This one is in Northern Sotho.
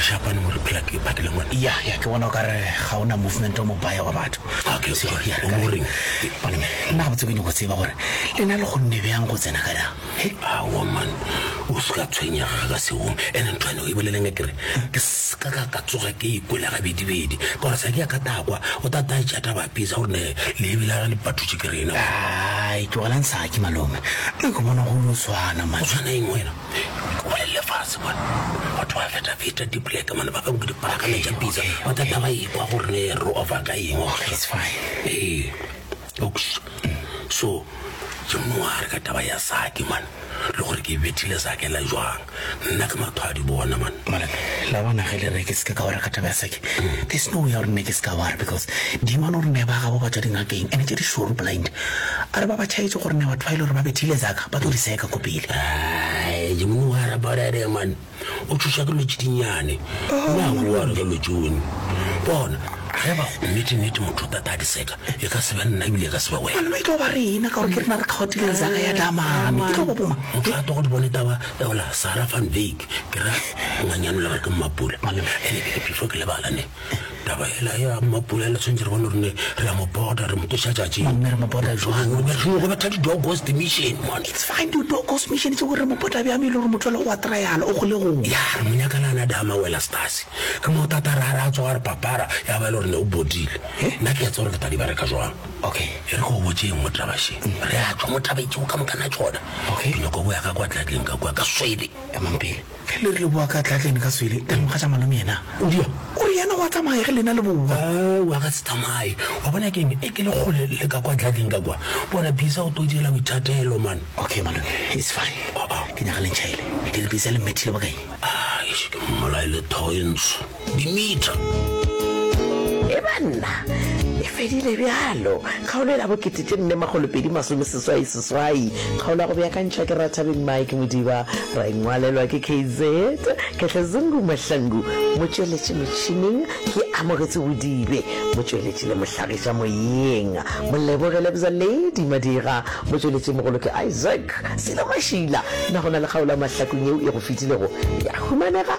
rešapane mo re phela ke phakele ngwana ya ya ke bona o ka re ga o na movement o mobaya wa batho nna ga botse ke nyoko tseba gore le na le go nne bjang go tsena ka dang aoman o se ka tshwenyega ka seong ene ntho ene o e boleleng e kere Se ka ka ka tsoga ke ikwele gabedibedi, ka gore sa ke ya ka takwa o ta ta tša taba pisa gore ne le ebile ga le patutše ke rena. Ai, tlogelang saki malome, le go bona go lo swana ma. O tshwana eng wena? Ke bolelele fase mane. Batho ba feta feta di black mane ba bang ke di parakana tša pisa. Ba ta ta ba ikwa gore ne re ofa ka eng. Okay, it's fine. Ee. Oops. So, ke moare ka taba ya sake man le gore ke bethile sake la jwang nna ke mathwadi bona man mara la bona ge le re ke seke ka wara ka taba ya sake mm. there's no way ya gore nne ke seka wara because dima no rene ba gabo ba tswa dingakeng and tse di sure blind a re ba ba tšhaetse gore ne batho ba ile gore ba bethile zaka ba tlo di seka ko pele ke mongwe wa rabarere man o tšhoša ke lotši dinyane na go wa re ka lotši one bona ge ba go nnete nnete motho o tata a diseka e ka se be nna ebile e ka se be wena mme e tlo ba rena ka gore ke rena re kgaotileng zaga ya damane e tlo ba boma motho a togo di bone taba eola sara van bake ke ra ngwanyanola gore ke mmapula ene ke phefo ke lebalane taba ela ya mapula ela tshwanetse re bone rone re a mo borda re mo tloša tšatšinggo betha di-dogos mission dogos mission tse gore mo botla bjang e le gore motho le go wa trial o gole gong ya re mo nyakalana dama wela stase ke mo tata ra re a tsoga re papara ya ba e le gore ne o bodile nna ke etse gore ke tadi bereka jwang okay e re go botseng mo trabašeng re a tswa mo trabaitsego ka mokana tsona ke nyako boya ka kwa tlatleng ka kwa ka swele emampele Ge le re le bowa ka Tlatlene ka swele, le nkga tša malome yena o di ya? O re yena o a tsamaya ge lena le bowa. Aowa, a ka se tsamaye. Wa bona ke eng? E ke le kgole le ka kwa Tlatlene ka kwa. Bona Bisa o tlo direla boithatelo man. Okay malome, it's fine. Ke nyaka le ntšhaele. Ke re Bisa le mmethile bokae? Eish, ke mmolaile thoe ntsho. Dimitri. E ba nna, e fedile bjalo. Kgaolo e la bokete tše nne makgolo pedi masome seswai seswai. Kgaolo ya go beakantšhwa ke Rathabeng Mike Modiba, ra e ngwalelwa ke KZ. Khehlezungu Mahlangu, motšweletši motšhining, ke Amogetso Bodibe, motšweletši le mohlagiša moyeng, Moleboge Lebza Lady Madira, motšweletši mogolo ke Isaac Silo Mashila. Na go na le kgaolo ya Mahlakong yeo e go fetilego ya humanega?